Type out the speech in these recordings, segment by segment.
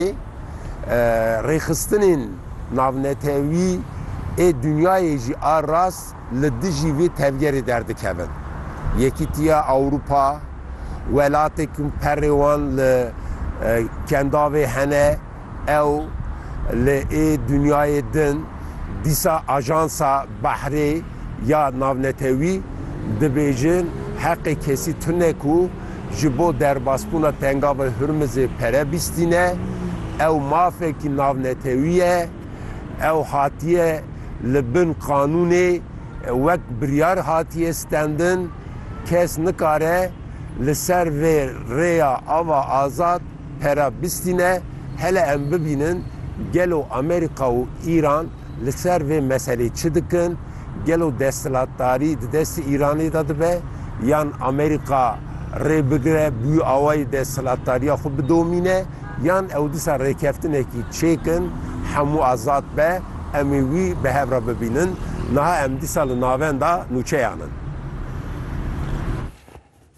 Îsraîlê rêxistinên navnetewî ê dinyayê jî a rast li dijî vê tevgerê derdikevin. Yekîtiya Ewropa, welatê ku perê wan li Kendavê hene, ew li ê dinyayê din dîsa ajansa behrê ya navnetewî dibêjin heqê kesî tune ku, ji bo derbasbûna Tengavê Hurmizê pere bîstîne. Ew mafekî navnetewî ye. Ew hatiye li bin qanûnê wek biryar hatiye stendin. Kes nikare li ser vê rêya ava azad pere bîstîne. Hele em bibînin gelo Amerîka û Îran Li ser vê meselê çi dikin? Gelo desthilatdarî di destê Îranê de dibe yan Amerîka rê bigire bi wî awayî desthilatdariya xwe bidomîne yan ew disa rêkeftinekî çêkin hemû azad be em ê wî bi hev re bibînin. Niha em dîsa li navenda nûçeyan in.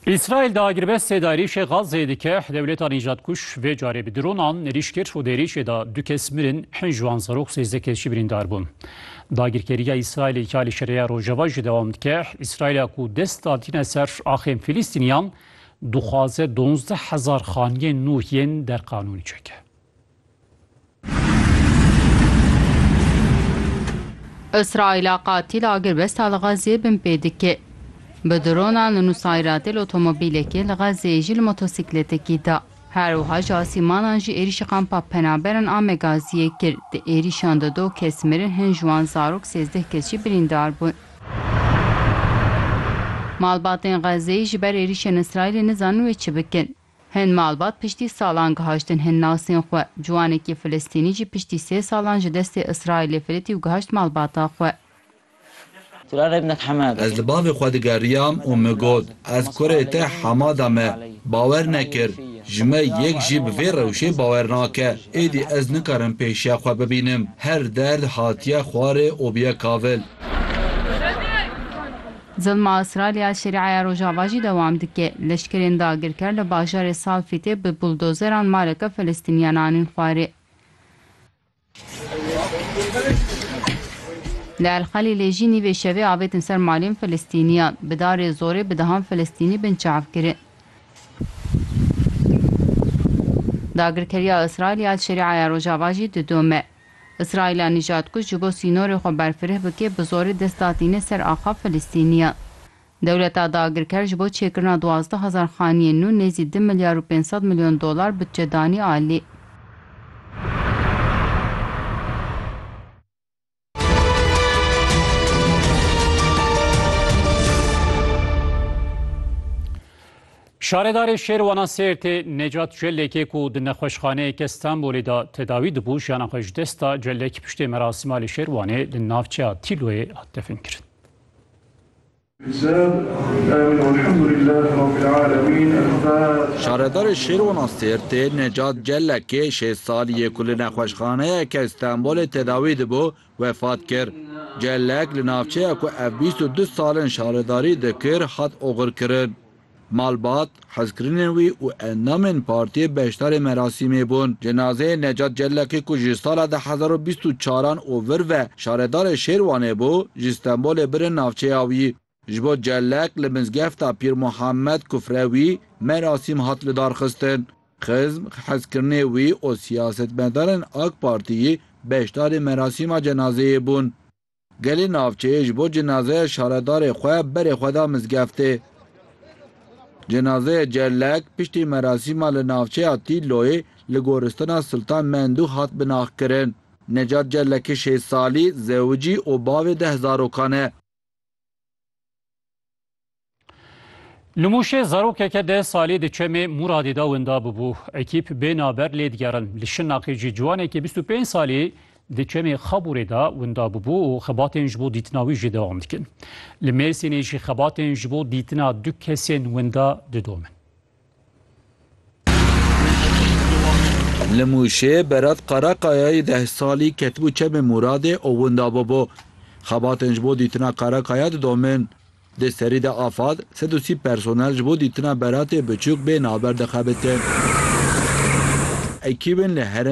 Îsraîl di agirbestê de êrîşê Gazeyê dike, dewleta nîjadkuj vê carê bi dronan êrîş kir û di êrîşê de du kes mirin, pênc wan zarok, sêzdeh kes jî birîndar bûn. Dagirkeriya Îsraîlê ya li Şereya Rojava jî dewam dike. Îsraîla ku dest da tîna ser axên Fîlîstîniyan, dixwaze donzdeh hezar xaniyên nû yên derqanûnî çeke. Îsraîla qatîl a girbesta li Xezzê binpê dike. Bi dronan li Nusayratê li otomobîlekê li Xezzeyê jî li motosîkletekî da. Her wiha ji asîmanan jî êrîşî kampa penaberan a Megaziyê kir. Di êrîşan de du kes mirin hin ji wan zarok sêzdeh kes jî birîndar bûn. Malbatên Xezzeyê ji ber êrîşên Îsraîlê nizanin wê çi bikin. Hin malbat piştî salan gihaştin hin nasên xwe. Ciwanekî Filistînî jî piştî sê salan ji destê Îsraîlê firitî û gihaşt malbata xwe. Ez li bavê xwe digeriyam û min got, Ez kurê te hema de me bawer nekir. Ji me yek jî bi vê rewşê bawer nake. Êdî ez nikarim pêşiya xwe bibînim. Her derd hatiye xwarê û biye kavil. Zilma Îsraîlya Şerîaya Rojava jî dewam dike. Leşkerên dagirker li bajarê Salfîtê bi buldozeran maleke Filistîniyan anîn xwarê. Li El Xelîlê jî nîvê şevê avêtin ser malên Filistîniyan. Bi darê zorê bi dehan Filistînî bin çav kirin. Dagirkeriya Îsraîlya li Şerîaya Rojava jî didome. Îsraîla nîjad ku ji bo sînorê xwe berfireh bike bi zorê dest da tîne ser axa Filistînî ya. Dewleta dagirker ji bo çêkirina duwazdeh hezar xaniyên nû nêzî du milyar û pênc sed milyon dolar budçe danî alî. Şaredarê Şêrwana Sêrtê Necat Celekê ku di nexweşxaneyeke Stenbolê de tedawî dibû jiyana xwe ji dest da. Celek piştê merasîma li Şêrwanê li navçeya Tîloyê hat definkirin. Şaredarê Şêrwana Sêrtê Necat Celekê şêst salî ye ku li nexweşxaneyeke Stenbolê tedawî dibû wefat kir. Celek li navçeya ku ev bîst û du sal in şaredarî dikir hat oxirkirin. Malbat, hezkirinên wî û endamên partiyê beşdarê merasîmê bûn. Cenazeyê Necat Cellekî ku ji sala di hezar û bîst û çar an û vir ve şaredarê Şêrwanê bû, ji Stenbolê birin navçeya wî. Ji bo Cellek li mizgefta Pîr Muhammed kufre wî merasîm hat lidarxistin. Xizm, hezkirinê wî û siyasetmedarên AK Partiyî beşdarê merasîma cenazeyê bûn. Gelê navçeyê ji bo cenazeya şaredarê xwe berê xwe da mizgeftê. Cenazeye Cerlek piştî merasîma li navçeya Tîlloyê li Goristana Siltan Mendû hat binaxkirin. Necat Cerleki şêst salî, zewicî û bavê deh zarokan e. Li Mûşê zarokeke deh salî di çemê Mûradê de winda bûbû. Ekîp bê naber lê digerin. Li Şirnexê jî ciwanekî bîst û pênc salî di çemê Xabûrê de winda bûbû û xebatên ji bo dîtina wî jî dewam dikin. Li Mêrsînê jî xebatên ji bo dîtina du kesên winda didomin. Li Mûşê Berat Karakaya yê deh salî ketibû çemê Mûradê û winda bûbû. Xebatên ji bo dîtina Karakaya didomin. Di serî de Afad sed û sî personel ji bo dîtina Beratê biçûk bê navber dixebitin. Ekîbên li herêmê